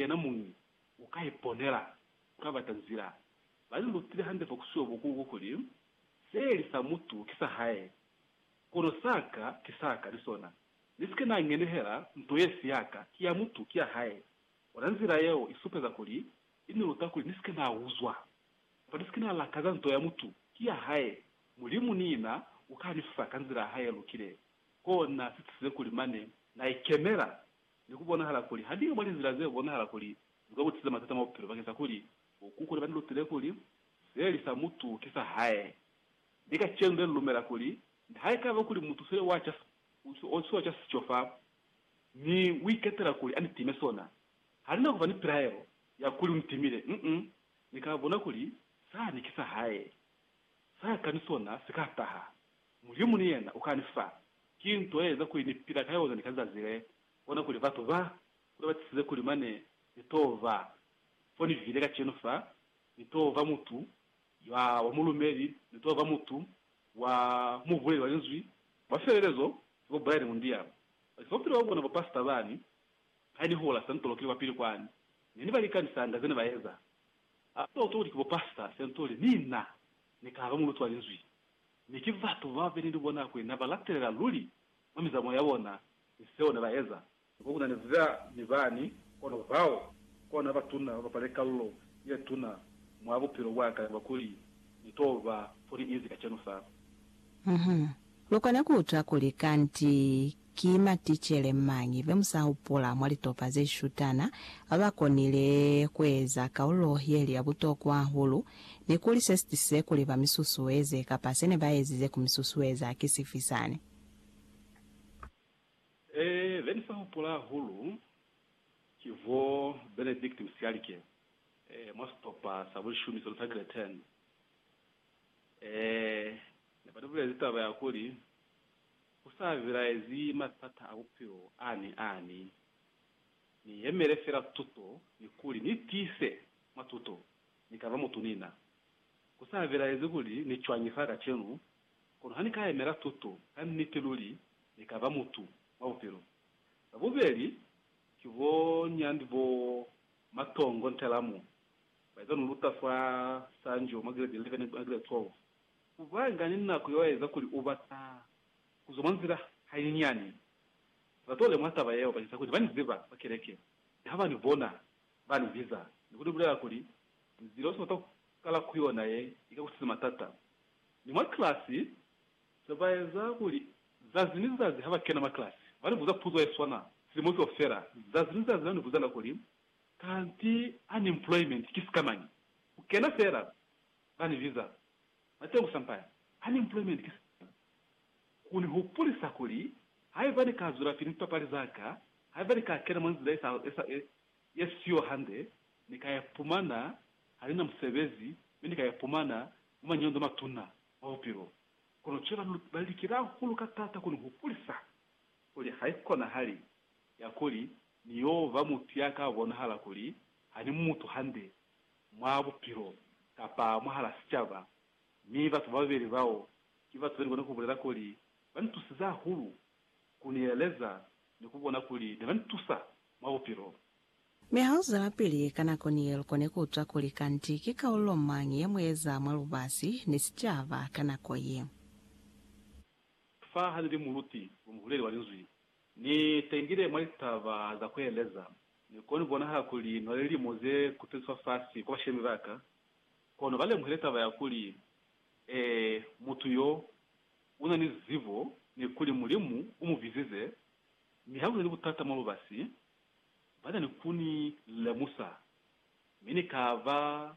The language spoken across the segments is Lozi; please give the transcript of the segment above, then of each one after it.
yena muñwi u ka iponela ku ka bata nzila. Ba li lutile hande fa ku siwa bukuluku kuli, Se li sa mutu ki sa hae, kono sa ka ki sa ka ni sona. Ni si ke na ngenehela nto ye si ya ka, ki ya mutu, ki ya hae. Ona nzila yeo i supeza kuli i ni luta kuli ni si ke na uzwa, kapa ni si ke na lakaza nto ya mutu ki ya hae. Mulimu ni yena u ka ni fa ka nzila ya hae ye lukile. Kona si tisize kuli mane na ikemela Ne ku bonahala kuli ha liñwi mwa linzila ze bonahala kuli li ka ku tlisetsa matata mwa bupilo bakeng sa kuli bokukulu ba ni lutile kuli, Se li sa mutu ki sa hae. Mi kacenu ne ni lumela kuli nihaikaba kuli mutu seli wa ca siotwiwa ca sico fa, mi u iketela kuli a ni time sona, ha ni na ku ba ni pilaelo ya kuli u ni timile. Uh-uh. Ni ka bona kuli sani ki sa hae. Sa ka ni sona si ka taha. Mulimu ni yena u ka ni fa. Ki nto ye eza kuli ni pila ka yona ni ka zazi le. Bona kuli batu ba kule ba tisize kuli mane ni to ba fo ni bile kacenu fa, ni to ba mutu ya wa mulumeli, ni to ba mutu wa mubuleli wa Linzwi wa sielelezo, ki bo Brian Mundial. Bakisa bupilo bwa bona bupasita bani, ha ni hula Sentolokile kwa pili kwani, ne ni ba likanisanga zene ba eza. Ha ba uto kuli ki bupasita Sentoli, ni na ni ka ba muluti wa Linzwi. Mi ki batu babeli ni bona kuli na ba latelela luli mwa mizamo ya bona ni seo ne ba eza. Ni kwa ku na ni za ni bani, kono bao kona ba tuna ba bapale kalulo ye tuna mwa bupilo bwa ka kaba kuli ni to ba fo ni inzi kacenu fa. Uhum. Lu kona ku utwa kuli kanti Ki maticele mañi be mu sa hupula mwa litopa ze shutana ba ba konile ku eza kaulo ye li ya butokwa hahulu, ni kuli se si tisize kuli ba mi susueze kapa se ne ba ezize ku mi susueza ki sifi sani? Ee, be ni sa hupula hahulu ki bo Benedict Msialike mwa sitopa sa bulishumi se lu tagile Turn. Ee, ne ba ni bulezi taba ya kuli, Ku sa bilaezi matata a bupilo a ni a ni, ni yemele fela tuto ni kuli ni tiise mwa tuto ni ka ba mutu ni na. Ku sa bilaezi kuli ni cwañi fa kacenu, kono ha ni ka yemela tuto, ka niti luli ni ka ba mutu mwa bupilo. Ba bubeli ki bo nyandi bo Matongo Ntelamu, ba iza lu luta fa Sanjo mwa Grade 11 ni mwa Grade 12. Kubanga ni nako yoeza kuli ubata kuzwa mwa nzila hainyinyani, batole mwa taba yeo bakeza kuli bani ziba kwa keleke ni habani bona bani biza ni kuni bulela kuli nzila usi bata kukala ku yona ye ika kutisi matata. Ni mwa kilasi sebaeza kuli zazi ni zazi haba kena mwa kilasi bani buza puzo yeswana silimo kaufela. Zazi ni zazi nani buzanga kuli, Kanti unemployment ki sikamañi? Kukena fela ba ni biza bate ku sampaya, unemployment, ki sina ku ni hupulisa kuli haiba ni ka zwelapili ni lipapali za ka, haiba ni ka kena mwa nzila ye siyo hande, ni ka ipumana ha ni na musebezi mi ni ka ipumana mwa mañondo a matuna mwa bupilo. Kono cwale ba ba likela hahulu ka taata ku ni hupulisa kuli haikonahali ya kuli ni yo ba mutu ya ka bonahala kuli ha ni mutu hande, mwa bupilo kapa mwahala sicaba, mi batu bababeli bao ki batu benikona kubulela kuli banitusize hahulu, kunieleza, ni kubona kuli nebanitusa mwa bupilo. Mi hauzwelapili ka nako niye lukone kuutwa kuli kanti ki kaululo mañi yemueza mwa lubasi ni sicaba ka nako ye. Fa hanili muluti yomuhuleli wa Linzwi, Ni tengile mwa litaba za kueleza. Ni koni kubonahala kuli nwa lilimo ze kuteliswa fasi kwa bashemi baka, kono ba lemuhile taba ya kuli, Ee, mutu yo una ni zibo, ni kuli Mulimu u mu bizize. Mi ha kuli ni butata mwa lubasi, bana ni kuni lemusa. Mi ni kaba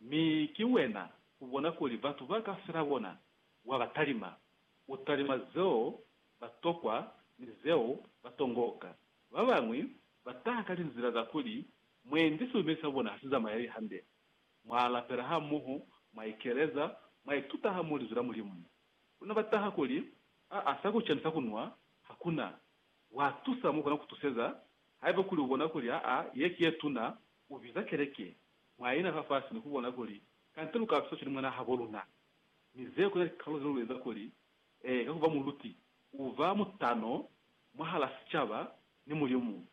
Mi ki wena ubona kuli batu ba ka fela bona, wa ba talima. U talima zeo ba tokwa ni zeo ba tongoka. Ba bañwi ba taha ka linzila za kuli, Mwendi silumeli sa bona ha si zamaeli hande. Mwa lapela hamoho, mwa ikeleza, mwa ituta hamoho Linzwi la Mulimu. Luna ba taha kuli, Aa, sa kuca ni sa kunwa ha ku na. Wa tusa mo kona ku tuseza. Haiba kuli u bona kuli aa, ye ki ye tuna, u biza keleke. mwa ina fafasi ni ku bona kuli kante lu ka tusa cwani mwana habo luna. Mi zeo kuna likalolo ze lu eza kuli ee ka ku ba muluti u ba mutano mwahala sicaba ni Mulimu.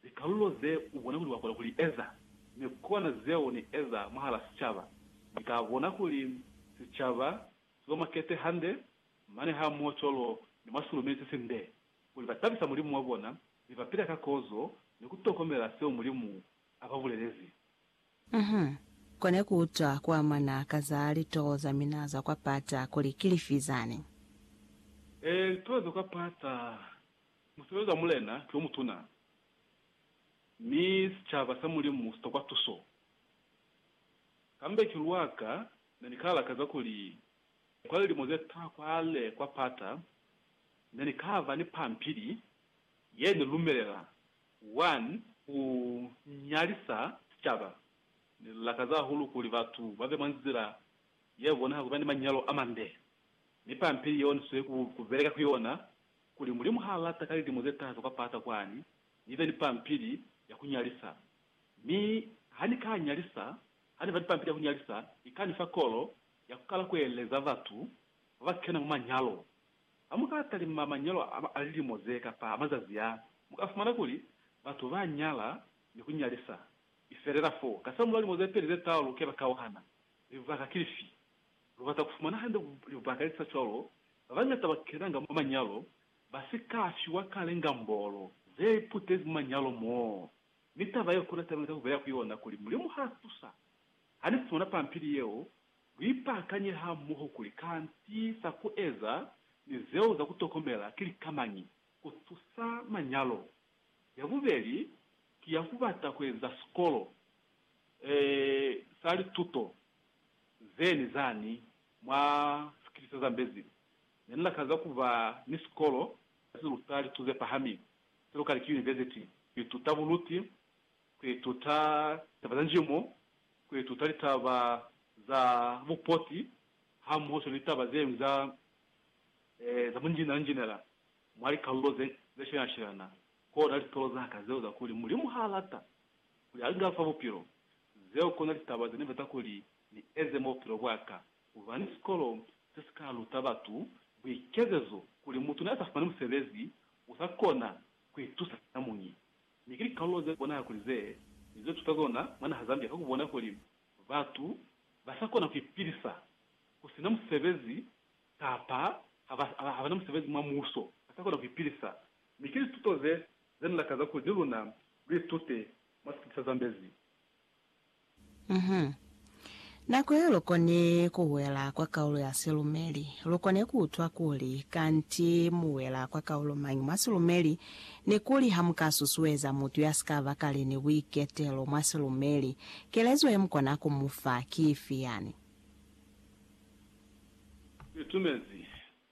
Likalolo ze u bona kuli wa kona ku li eza ni kona zeo ni eza mwahala sicaba. Ni ka bona kuli sicaba si ba makete hande, mane hamoho cwalo ni mwa silumeli se sinde, kuli ba tabisa Mulimu wa bona mi ba pila ka kozo ni ku tokomela seo Mulimu a ba bulelezi. Uhum. Kone ku utwa ku amana ka za litoho za mina za kwa pata kuli ki lifi zani? Ee, litoho za kwa pata, musebezi wa Mulena ki o mutuna, mi sicaba sa Mulimu si tokwa tuso. Kambe ki lwa ka ne ni ka lakaza kuli kwa lilimo ze taha kwale kwa pata ne ni ka ba ni pampili ye ni lumelela 1 ku nyalisa sicaba. Ne lu lakaza hahulu kuli batu ba be mwa nzila ye bonaha ku ba ni manyalo a mande. Mi pampili yeo ni sweli ku beleka ku yona kuli Mulimu ha lata ka lilimo ze taha za kwa pata kwani ni be ni pampili ya ku nyalisa. Mi ha ni ka nyalisa, ha ni ba ni pampili ya ku nyalisa, i ka ni fa kolo ya ku kala ku eleza batu ba ba kena mwa manyalo Ha mu ka talima manyalo a lilimo ze ka fa mazazi a, mu ka fumana kuli batu ba nyala ni ku nyalisa. I felela fo. Kasamulaho limo ze peli ze tau lu ke lwa kauhana. Libaka ki lifi? Lu bata ku fumana hande libaka li sa cwalo. Ba bañata ba kenanga mwa manyalo ba si ka fiwa kale ngambolo ze iputezi mwa manyalo moo. Mi taba yeo ku na taba ye ni ka ku beya ku yona kuli, Mulimu ha tusa. Ha ni fumana pampili yeo, Luipakanye hamoho kuli kanti za kueza ni zeo za kutokomela ki lika mañi kutusa manyalo. Yabubeli ki ya kubata kueza sikolo e sa lituto ze ni zani mwa sikili se zambezi. Ne ni lakaza kuba ni sikolo se si luta litu ze pahami, se lukali ki yunivesiti, ku ituta buluti kuituta taba za njimo, kuituta litaba za bupoti hamohoswani ni taba zeñwi za za bunjinela-njinela mwa likalulo ze zeshelana-shelana, kona litolo za ka zeo za kuli Mulimu ha lata, kuli a nga fa bupilo, zeo kona litaba ze ni bata kuli ni eze mwa bupilo bwa ka. Kuba ni sikolo se si ka luta batu buikezezo, kuli mutu ne a sa fumani musebezi u sa kona kuitusa muñi, Mi ki likalolo ze bonahala kuli ze ni ze tuta zona mwa naha Zambia ka ku bona kuli batu ba sa kona ku ipilisa ku sina musebezi kapa ha ba, ha ba na musebezi mwa muuso, ba sa kona ku ipilisa. Mi ki lituto ze, ze ni lakaza kuli ni luna lu itute mwa sikiti sa Zambezi. Mhm. Nako ye lu koni ku wela kwa kaulo ya silumeli, lu koni ku utwa kuli kanti mu wela kwa kaulo mañi mwa silumeli, ni kuli ha mu ka susueza mutu ya si ka ba kale ni buiketelo mwa silumeli, kelezo ye mu kona ku mu fa ki ifi yani? Ni tumezi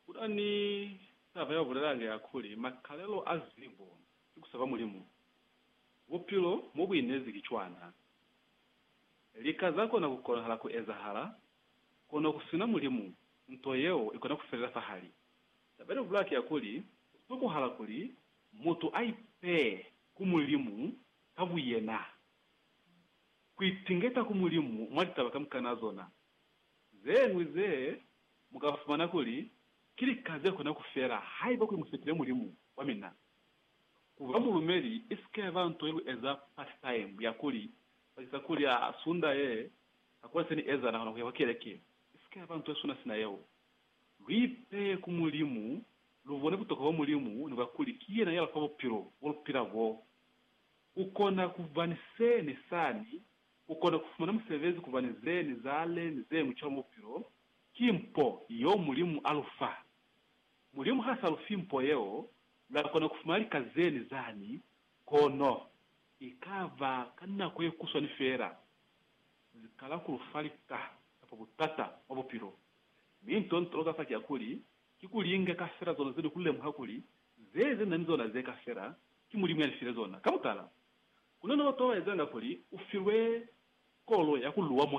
ku ta ni taba ya ku bulela nge ya kuli, makalelo a zibo ki ku sepa Mulimu. Bupilo mo bu inezi ki cwana. Lika za kona ku konahala ku ezahala, kono ku sina Mulimu, nto yeo i kona ku felela fahali. Taba ya bubulaki ya kuli, ku tokohala kuli mutu a ipee ku Mulimu ka buyena, ku itingeta ku Mulimu mwa litaba kamukana zona. Ze ñwi ze mu ka fumana kuli ki lika ze kona ku fela haiba kuli mu sepile Mulimu wa mina. Ku ba mulumeli i si ke ba nto ye lu eza part time ya kuli baki sa kuli a Sunda ye, ka kuli se ni eza na kona ku ya kwa keleke, i si ke ba nto ye suna sina yeo. Lu ipeye ku Mulimu, lu bone butokwa bwa Mulimu ni bwa kuli ki yena ya lu fa bupilo bo lu pila bo. Ku kona ku ba ni se ni sani, ku kona ku fumana musebezi, ku ba ni ze ni zale ni ze ñwi cwalo mwa bupilo, ki mpo yeo Mulimu a lu fa. Mulimu ha sa lu fi mpo yeo, Lwa kona ku fumana lika zeni zani, kono i ka ba ka nako ye kuswani fela. Zi kala ku lu fa lika kapa butata mwa bupilo. Mi nto nto ka fa ki ya kuli, ki ku linga ka fela zona ze ni ku lemuha kuli ze ze ni na ni zona ze ka fela ki Mulimu ya ni file zona. Ka mutala, ku na ni batu ba ba ezanga kuli u filwe kolo ya ku luwa.